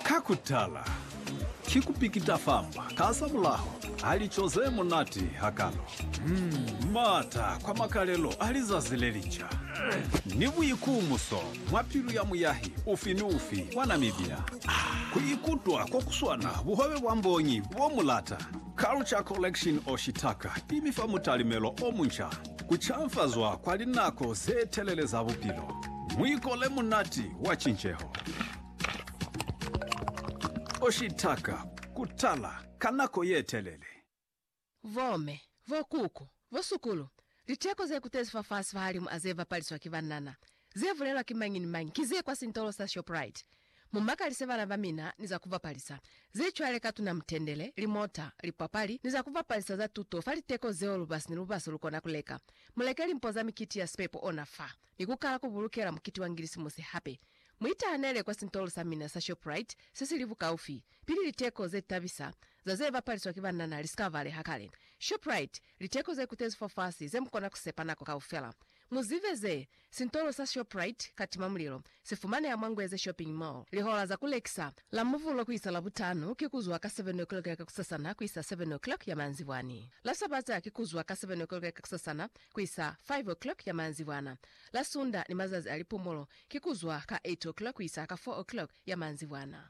Ka ku tala, ki ku pikita famba kasamulaho ha lico ze munati hakalo, m'ata kwa makalelo a lizazi le linca, ni buikumuso mwa pilu ya muyahi ufi ni ufi wa Namibia ku ikutwa ko ku swana buhwebe bwa mbonyi bo mu lata. Culture Collection Oshitaka i mi fa mutalimelo o munca. Ku canfazwa kwa linako ze telele za bupilo. Muikole munati wa cinceho. Oshitaka ku tala ka nako ye telele. Bomme, bokuku, bosukulu, liteko ze kutezi fafasi fahalimu a ze bapaliswa ki banana, Ze bulelwa ki mañi ni mañi ki ze kwa sintolo sa Shoprite. Mu makalise bana ba mina ni za ku bapalisa ze cwale ka tuna mutendele, limota, lipapali, ni za ku bapalisa za tuto fa liteko zeo lubasi ni lubasi lu kona ku leka. Mu leke limpo za mikiti ya sipepo ona fa, ni ku kala ku bulukela mukiti wa Ngilisimusi hape. Mu itahanele kwa sintolo sa mina sa Shoprite se si li bukaufi, pili liteko ze tabisa za ze bapaliswa ki banana li si ka baleha kale. Shoprite, liteko ze kutezi fafasi ze mu kona ku sepa nako kaufela. Mu zibe ze, Sintolo sa Shoprite, ka tima mulilo, si fumaneha mwa Ngweze Shopping Mall. Lihola za ku lekisa, la Muvulo ku isa Labutanu, ki ku zwa ka 7 o'clock ya kakusasana ku isa 7 o'clock ya maanzibwani. La Sabata ki ku zwa ka 7 o'clock ya kakusasana ku isa 5 o'clock ya maanzibwana. La Sunda ni mazazi a lipumulo ki ku zwa ka 8 o'clock ku isa ka 4 o'clock ya maanzibwana.